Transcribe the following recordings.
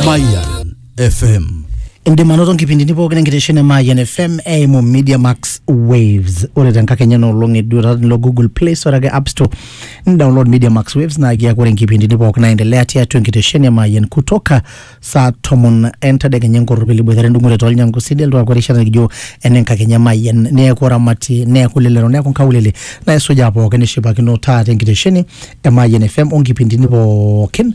Mayan FM. indim anoto nkipindini pookin enkitesheni e Mayan FM eimu Media Max Waves ore tenkakenya ena olong eduata nilo Google Play Store ake App Store nidownload Media Max Waves naa kiaku ore nkipindini pookin naendelea tiatua enkitesheni e Mayan kutoka saa tomon entadekenya enkorropil iboitare endung'ore tolnyangu sidel tuaku erishata nikijo ene nkakenya e Mayan neeku oramati neeku lelero neeku nkaulele naisujaa pookin nishipakino taata enkitesheni e Mayan FM onkipindini pookin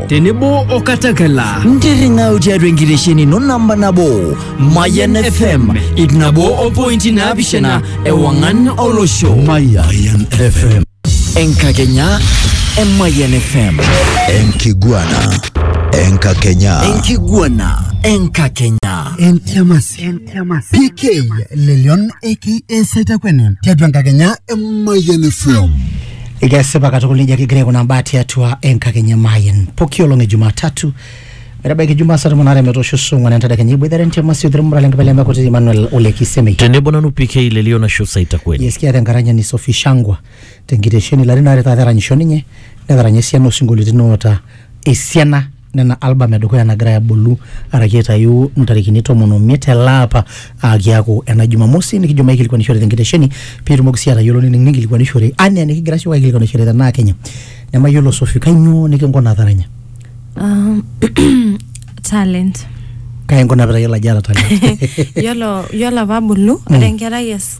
tenebo o katakela ntirring'au tiatua enkitesheni ino namba nabo mayan fm ip nabo o pointi naapishana ewang'an olosho Mayan FM. enkakenya e mayan fm Enkiguana. Enkakenya. enkiguana enkakenya Entiamasi. Entiamasi. PK Lelion aka Saitakweni. Tiatua enkakenya e Mayan FM. Kesipa katukul nejia kigira aikunaa mbaa tiatua enkakenya Mayian poki olong e Jumatatu metabaiki Jumaa saa tomon aare metoosho saa ong'wan entadekenya iboitare ntema sio terumura lenkipele emekutiti Emmanuel Ole Kisemei. tenebo nanu PK Lelio Nashu Saita kweli Yes, kiata enkaranyani Sophie Shangwa tenkitesheni ilarin aare taata eranyisho ninye netaranya esiana osinkolioitin oota esiana nena album edukuya nagira abulu araki aitayu ntarikini tomon omiet ele apa aa kiaku ena jumamosi nikijo maikilikuanishore tenkitesheni piitumoki sii atayiolo nining ninkilikuanishore anaa enikigira siyiok aikilikuanishore tenaa kenya nemayiolo sofi kainyoo nikinkuna taranya Um, talent kai inkuna pitayiolo ajo eeta talent yiolo yiolo apa abulu ore enkerai es-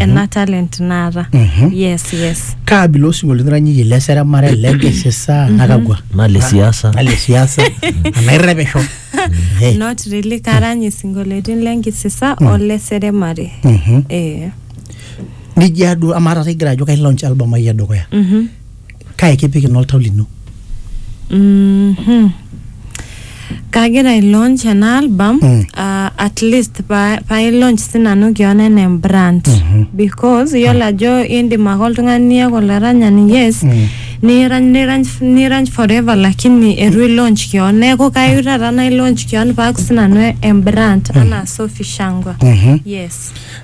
ena talent naata Mhm. yes yes kaabila osinkoliotin iranyiyie le seremare le nkisisa nakakwa nale siasa nale siasa anairrepisho Eh, not really karany isinkolioitin lenkisisa ole seremare mhm. eh nijia duo amaa taata igira ajo kai launch album ai edukuya mhm kae kipik ina oltau lino Mhm. kagira ai launch ena album Mm. ah, at least pa- pae launch sinanu kion enaa embrand because iyiolo ajo indim ake oltung'ani iyaku olaranyani yes Mm. nirany nirany nirany forever lakini etu i launch kion neeku kayieu taata nai launch kion paaku sinanu embrand anaa Sophie Shangwa Mhm. yes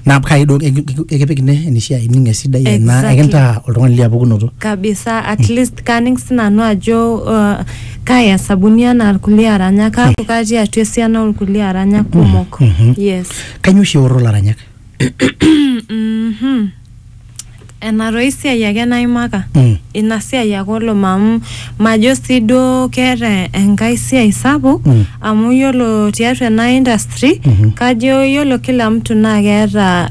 naa kai duo eki- eki- ekipik ine enishaa ining esidai enaa Exactly. ekintaa oltung'ani liapukunoto kabisa at least kaning sinanu ajo uh, kaya sabuni anaa irkulie aranyak kaaku katii atua esiana orkulie aranyak kumok yes kanyio oshi eoro laranyak Mhm. enatoi siai ake naimaka Mm. ina siai ake oloma amu majo sii duo keeta enkae siai sapuk Mm. amu yiolo tiatua ena industry Mhm. kajo yiolo kila mtu naa keeta